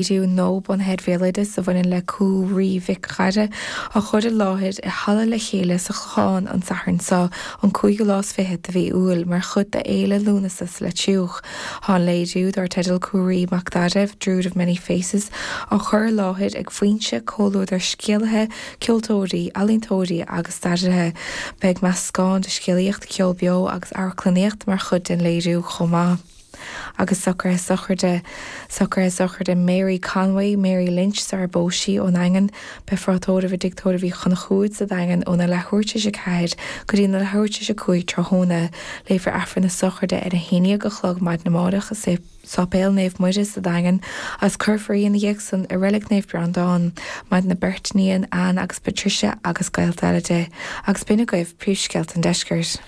léiriú nua bunaithe ar bhéaloideas a bhaineann le Cú Raoi Mhic Dáire á chur i láthair i Halla Le Chéile sa Chlochán an Satharn seo an cúigiú lá is fiche de mhí Iúil mar chuid d'Fhéile Lúnasa sa Leitriúch. Tá an léiriú, dár teideal Cú Raoi Mac Dáire, Druid of Many Faces, á chur i láthair ag Foinse, comhluadar scéalaithe, ceoltóirí, ealaíontóirí agus stairithe. Beidh meascán de scéalaíocht, ceol beo agus amharclannaíocht mar chuid den léiriú chomh maith. agus socruithe sochraide, socruithe sochraide Mary Conway, Mary Lynch sarar phós sí ón Daingean, Beifear á tórramh i dtigh tórraimh Uí Chonchúir sa Daingean óna leathuair tar éis a 4 go dtí na leathuair tar éis a 5 tráthnóna. Léifear Aifreann na sochraide ar a haon dhéag a chlog maidin amáireach i Sáipéal Naomh Muire sa Daingean agus cuirfear í ina dhiaidh san i Reilig Naomh Breandán. Maireann a beirt iníon, Anne agus Patricia agus gaolta eile di. Agus b'in agaibh príomhscéalta an Deiscirt.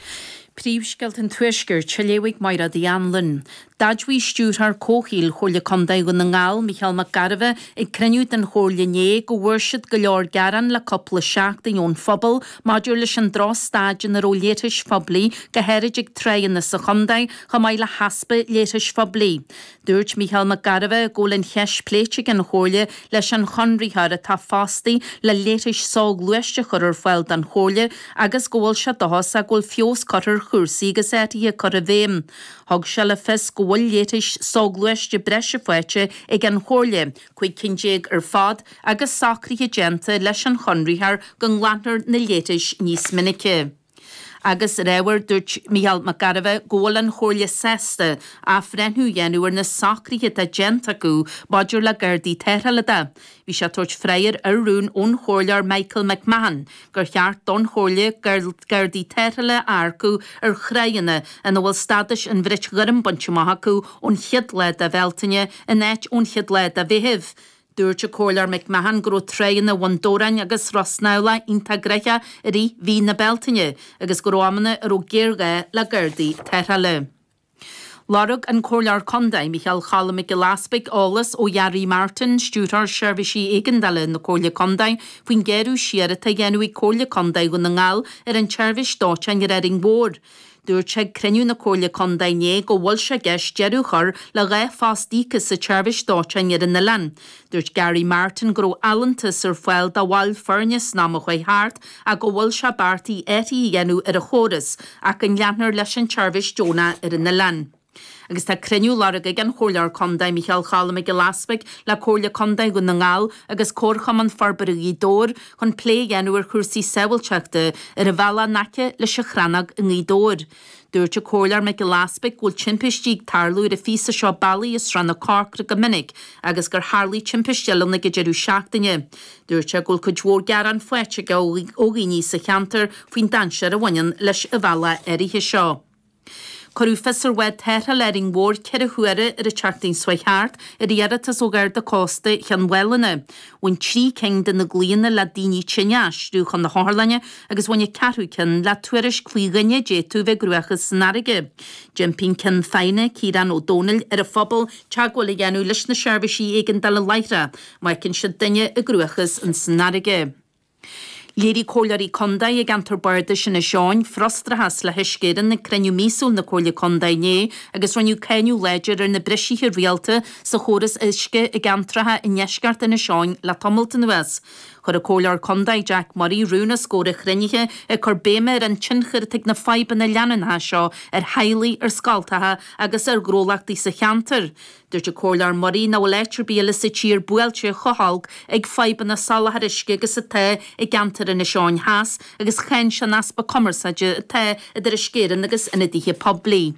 Príomhscéalta an Tuaiscirt, á léamh ag Máiréad Uí Annluain, d'admhaigh Stiúrthóir Comhshaoil Chomhairle Contae Dhún na nGall, Mícheál Mac Gairbheith, ag cruinniú den Chomhairle inné go bhfuair siad go leor gearán le cúpla seachtain ón phobal maidir leis an drochstaid ina raibh leithris phoiblí go háirid ag tráigheanna sa chontae chomh maith le heaspa leithris phoiblí Dúirt Mícheál Mac Gairbheith go bhfuil an cheist pléite ag an Chomhairle leis an chonraitheoir atá fostaí le leithris soghluaiste a chur ar fáil don Chomhairle agus go bhfuil sé dóchasach go bhfuil feabhas curtha ar chúrsaí agus athruithe curtha i bhfeidhm. Thug sé le fios go bhfuil leithris soghluaiste breise faighte ag an Chomhairle, cúig cinn déag ar fad, agus socruithe déanta leis an chonraitheoir go nglanfar na leithris níos minice. Agus ar ábhar, dúirt Micheál Mac Gairbheith go bhfuil an Chomhairle sásta athbhreithniú a dhéanamh ar na socruithe atá déanta acu maidir le Gardaí Tarrthála de. Bhí sé ag tabhairt freagra ar rún ón Chomhairleoir Michael McMahon gur cheart don Chomhairle Gardaí Tarrthála a earcú ar thráigheanna ina bhfuil stádas an Bhrait Ghoirm bainte amach acu ón chéad lá de Bhealtaine in áit ón chéad lá de Mheitheamh Dúirt an Comhairleoir McMahon go raibh tráigheanna Bhun Dobhráin agus Ros Neamhlach iontach gnoitheach i rith mhí na Bealtaine agus go raibh amanna a raibh géarghá le gardaí tarrthála. Lorg an Comhairleoir Contae, Micheál Cholm Mac Giolla Easpaig eolas ó Ghary Martin, Stiúrthóir Seirbhísí Éigeandála na Comhairle Contae faoin gearradh siar atá a dhéanamh ag Comhairle Contae Dhún na nGall ar an tseirbhís dóiteáin ar Árainn Mhór. Dúirt sé ag cruinniú na Comhairle Contae inné go bhfuil sé i gceist deireadh a chur le dhá phost íoctha sa tseirbhís dóiteáin ar an oileán. Dúirt Gary Martin go raibh allúntas ar fáil do bhaill foirne san am a chuaigh thart ach go bhfuil sé beartaithe athruithe a dhéanamh ar an chóras ach go leanfar leis an tseirbhís deonach ar an oileán. agus tá cruinniú á lorg ag an Chomhairleoir Contae Micheál Choilm Mac Giolla Easpaig le Comhairle Contae Dhún na nGall agus Comharchumann Forbartha Ghaoth Dobhair chun plé a dhéanamh ar chúrsaí sábháilteachta ar an bhealach in aice leis an Chrannóg i nGaoth Dobhair. Dúirt an Comhairleoir Mac Giolla Easpaig go bhfuil timpistí ag tarlú ar an phíosa seo bealaigh i Srath na Corcra go minic agus gur tharlaigh timpiste eile ann ag an deireadh seachtaine. Dúirt sé go bhfuil cuid mhór gearán faighte aige ó dhaoine sa cheantar faoin dainséar a bhaineann leis an bhealach áirithe seo. Cuireadh fios ar bhád tarrthála Árainn Mhór ceithre huaire ar an tseachtain seo chuaigh thart ar iarratas ó Gharda Cósta Chionn Mhálanna. Bhain trí cinn de na glaonna le daoine tinn a aistriú chun na hotharlainne agus bhain an ceathrú ceann le tuairisc faoi dhuine a d'fhéadfadh bheith i gcruachás san fharraige. D'impigh an Ceann Feadhna, Ciarán Ó Domhnaill, ar an phobal teagmháil a dhéanamh leis na seirbhísí éigeandála láithreach má fheiceann siad duine i gcruachás ins an fharraige. Léirigh Comhairleoirí Contae i gceantar Bardais Inis Eoghain frustrachas le hUisce Éireann ag cruinniú míosúil na Comhairle Contae inné agus rinneadh cáineadh láidir ar na bristeacha rialta sa chóras uisce i gceantracha i ndeisceart Inis Eoghain le tamalt anuas. Chuir an Comhairleoir Contae Jack Murray rún os comhair an chruinnithe ag cur béime ar an tionchar atá ag na fadhbanna leanúnacha seo ar theaghlaigh, ar scoltacha agus ar ghnólachtaí sa cheantar. Dúirt an Comhairleoir Murray nach bhfuil áit ar bith eile sa tír buailte chomh holc ag fadhbanna soláthair uisce agus atá ceantar Inis Eoghain Theas agus cháin sé an easpa cumarsáide atá idir Uisce Éireann agus ionadaithe poiblí.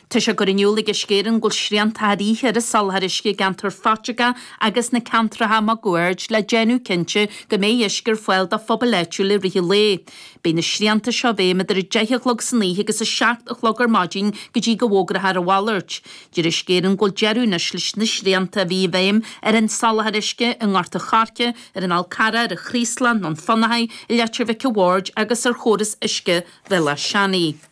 Tá sé curtha in iúl ag Uisce Éireann go bhfuil srianta i dtaobh oíche ar an soláthar uisce i gceantar Pheiteagó agus sna ceantracha maguaird le déanamh cinnte go mbeidh uisce ar fáil do phobail áitiúla i rith an lae. Beidh na srianta seo i bhfeidhm idir 10 a chlog san oíche agus 7 a chlog ar maidin go dtí go bhfógrófar a mhalairt. Deir Uisce Éireann go bhfuil deireadh anois leis na srianta a bhí i bhfeidhm ar an soláthar uisce i nGort an Choirce, ar an Fhál Carrach, ar an Chraoslán, Dún Fionnachaidh, i Leitir Mhic an Bhaird agus ar chóras uisce Bhéal Átha Seanaidh.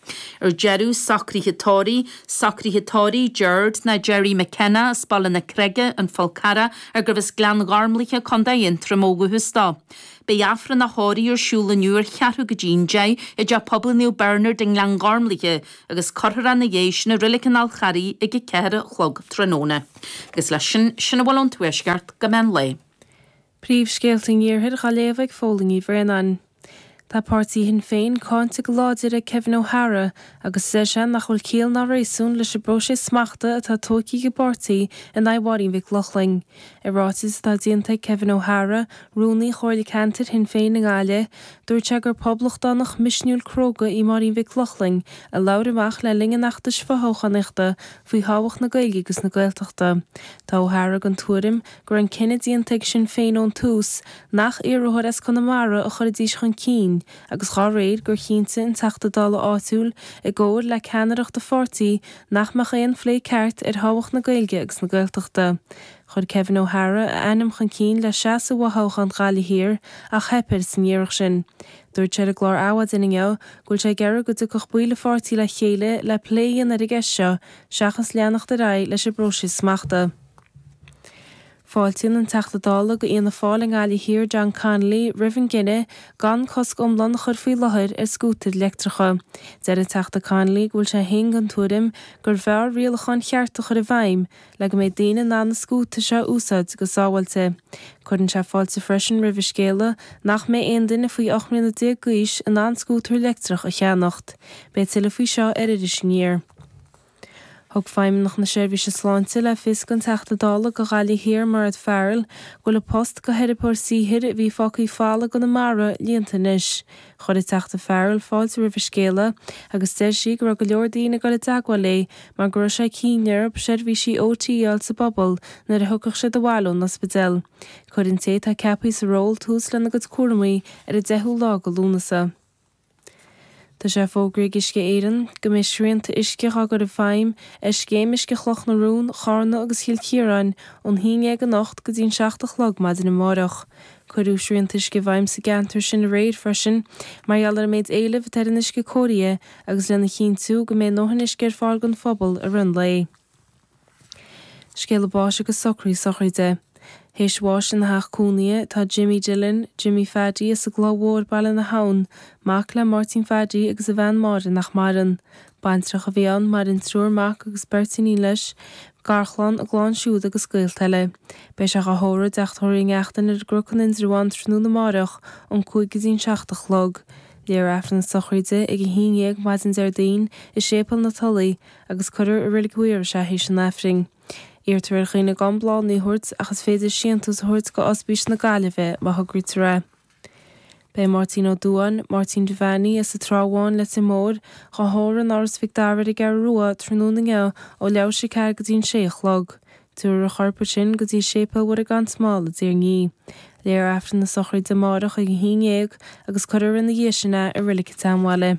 Ar deireadh, socruithe tórraimh, socruithe tórraimh, Gerard nó Gerry McKenna as Baile na Creige, An Fál Carrach, arbh as Gleann Ghormlaithe, Co. Aontroma ó dhúchas dó. Beidh Aifreann a thórraimh ar siúl inniu ar cheathrú go dtí an deich i dTeach Pobail Naomh Bernard i nGleann Ghormlaithe, agus cuirfear é ina dhiaidh sin i Reilig an Fháil Charraigh ag a ceathair a chlog tráthnóna. Agus leis sin, sin a bhfuil ón Tuaisceart go meán lae. Príomhscéalta an Iarthair dhá léamh ag Fiachra Ó Braonáin. Tá páirtí Shinn Féin cáinte go láidir ag Kevin O'Hara agus deir sé nach bhfuil ciall ná réasún leis an bpróiseas smachta atá tógtha ag an bpáirtí in aghaidh Mháirín Mhic Lochlainn. I ráiteas atá déanta ag Kevin O'Hara, Rúnaí Chomhairle Ceantair Shinn Féin i nGaillimh, dúirt sé gur poblachtánach misniúil cróga í Máirín Mhic Lochlainn a labhair amach le linn an fheachtais fothoghchánaíochta faoi thábhacht na Gaeilge agus na Gaeltachta. Tá O'Hara den tuairim go raibh an cinneadh déanta ag Sinn Féin ón tús nach iarrthóir as Conamara a chuirfidís chun cinn agus dá réir sin, gur chinntigh an Teachta Dála áitiúil, i gcomhar le ceannaireacht a pháirtí, nach mbeadh aon phlé ceart ar thábhacht na Gaeilge agus na Gaeltachta. Chuir Kevin O'Hara a ainm chun cinn le seasamh i bhfothoghchán Ghaillimh Thiar ach theip air san iarracht sin. Dúirt sé ar an gclár Adhmhaidin inniu go bhfuil sé ag iarraidh go dtiocfadh baill a pháirtí le chéile le plé a dhéanamh ar an gceist seo seachas leanacht ar aghaidh leis an bpróiseas smachta. Fáiltíonn an Teachta Dála go Fhianna Fáil i nGaillimh Thiar John Connolly roimh an gcinneadh gan cosc iomlán a chur faoi láthair ar scútair leictreacha. Deir an Teachta Connolly go bhfuil sé féin den tuairim gur bhfearr rialacháin chearta a chur i bhfeidhm le go mbeidh daoine in ann na scútair seo a úsáid go sábháilte. Cuireann sé fáilte freisin roimh an scéala nach mbeidh aon duine faoi 18 mbliana d'aois in ann scútar leictreach a cheannacht. Beidh tuilleadh faoi seo ar Iris Aniar. Thug Feidhmeannach na Seirbhíse Sláinte le fios don Teachta Dála do Ghaillimh Thiar Mairéad Farrell go bhfuil an post go theiripeoir saothair a bhí fágtha ag fáil i gConamara líonta anois. Chuir an Teachta Farrell fáilte roimh an scéala agus deir sí go raibh go leor daoine ag dul i dteagmháil léi mar go raibh sé cinnte orthub seirbhísí OT a fháil sa bpobal nuair a thiocfadh siad abhaile ón ospidéal. Cuirfidh an té atá ceapaithe sa ról tús lena gcuid cúramaí ar an 10ú lá go Lúnasa. Tá sé fógraithe ag Uisce Éireann go mbeidh srianta uisce dhá gcur i bhfeidhm ar scéim uisce Chloch na Rón, Chárna agus Chill Chiaráin ón haon dhéag anocht go dtí an seacht a chlog maidin amárach. Cuireadh srianta uisce i bhfeidhm sa gceantar sin aréir freisin mar gheall ar an méid éilimh atá ar an uisce cóirithe agus lena chinntiú go mbeidh a ndóthain uisce ar fáil don phobal i rith an lae. Scéala báis agus socraí sochraide. Théis bhás ina theach cónaithe tá Jimmy Dillon, Jimmy Phaddy, as an gCloch Mhór, Baile na hAbhann, mac le Máirtín Phaddy agus a bhean Máire nach maireann. Baintreach a bhí ann, maireann triúr mac agus beirt iníon leis, garchlann, a gclann siúd agus gaolta eile. Beidh sé ag dhá thórramh i dteach tórraimh Uí Neachtain ar an gCnoc in Indreabhán tráthnóna amárach ón cúig go dtí'n seacht a chlog. Léifear Aifreann na sochraide ag a haon dhéag maidin Déardaoin i Séipéal na Tulaí, agus cuirfear i Reilig Mhaorais é théis an Aifrinn. Iarrtar ar dhaoine gan bláthannaí a thabhairt ach is féidir síontús a thabhairt go Ospís na Gaillimhe má thograítear é. Beidh Máirtín Ó Dubháin, Máirtín Devaney, as an Trá Bháin, Leitir Móir, dhá thórramh in Áras Mhic Dara ar an gCeathrú Rua tráthnóna inniu ó leathuair théis a ceathair go dtí an sé a chlog. Tabharfar a chorp ansin go dtí Séipéal Mhuire Gan Smál i dTír an Fhia. Léifear Aifreann na sochraide amáireach ag a haon dhéag agus cuirfear ina dhiaidh sin é i Reilig an tSeanbhaile.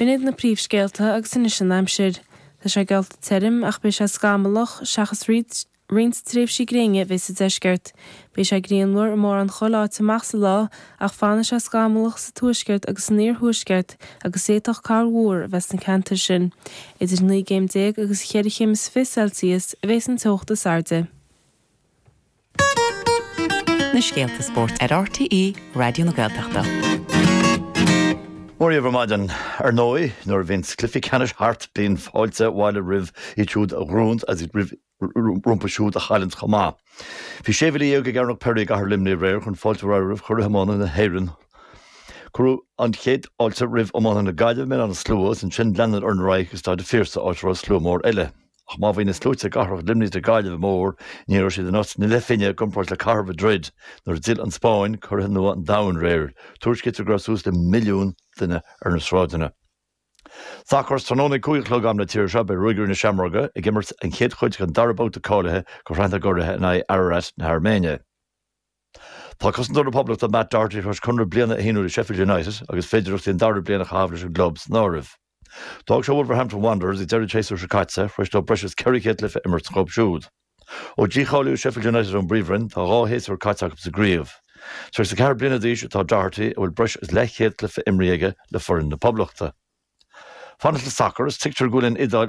B'in iad na príomhscéalta agus anois an aimsir. Tá sé geallta tirim ach beidh sé scamallach, seachas roinnt tréimhsí gréine a bheidh sa deisceart. Beidh sé grianmhar i mórán chuile áit amach sa lá ach fanfaidh sé scamallach sa tuaisceart agus san iarthuaisceart agus d'fhéadfadh corrmhúr a bheith sna ceantair sin. Idir naoi gcéim déag agus cheithre chéim is fiche Celsius a bheidh an teocht is airde. na scéalta spóirt ar RTÉ Raidió na Gaeltachta. Mora dhaoibh ar maidin. Ar ndóigh, nuair a bhíonns cluichí ceannais thart bíonn fáilte abhaile roimh iad siúd a ghnóthaíonns agus roimh iad rompu siúd a chailleanns chomh maith. Bhí sé mhíle dhéag ag Cearnóg Pery i gcathair Luimnigh aréir chun fáilte a chur roimh Churaidh Iomána na hÉireann. Cuireadh an chéad fháilte roimh iománaithe na Gaillimhe i mBéal Átha na Slua agus ansin lean siad orthu ar aghaidh go Staid an Phiarsaigh áit a raibh slua mór eile. Ach má bhí na sluaite i gcathracha Luimnigh is na Gaillimhe mór, ní raibh siad in áit na leathphingine i gcomparáid le cathair Mhadrid nuair a d'fhill an Spáinn, curaidh nua an domhain, aréir. Tuairiscítear go raibh suas le milliún duine ar na sráideanna. Sacar, is tráthnóna ag cúig a chlog am na tíre seo, beidh Ruagairí na Seamróige ag imirt an chéad chuid den dara babhta cáilithe do Shraith na gCuradh in aghaidh Ararat na hAirméine. Tá cosantóir na Poblachta Matt Doherty tar éis conradh bliana a shíniú le Sheffield United agus féidearthacht an dara bliain a chaitheamh leis an gclub san áireamh. D'fhág sé Wolverhampton Wanderers ag deireadh an tséasúir seo caite tar éis dó breis is 400 cluiche a imirt sa gclub siúd. Ó dícháilíodh Sheffield United ón bPríomhroinn, tá dhá shéasúr caite acu sa gcraobh. 34 bliana d'aois atá Doherty, a bhfuil breis is leathchéad cluiche imrithe aige le foireann na Poblachta. Ag fanacht le sacar, is tuigtear go bhfuil an Iodáil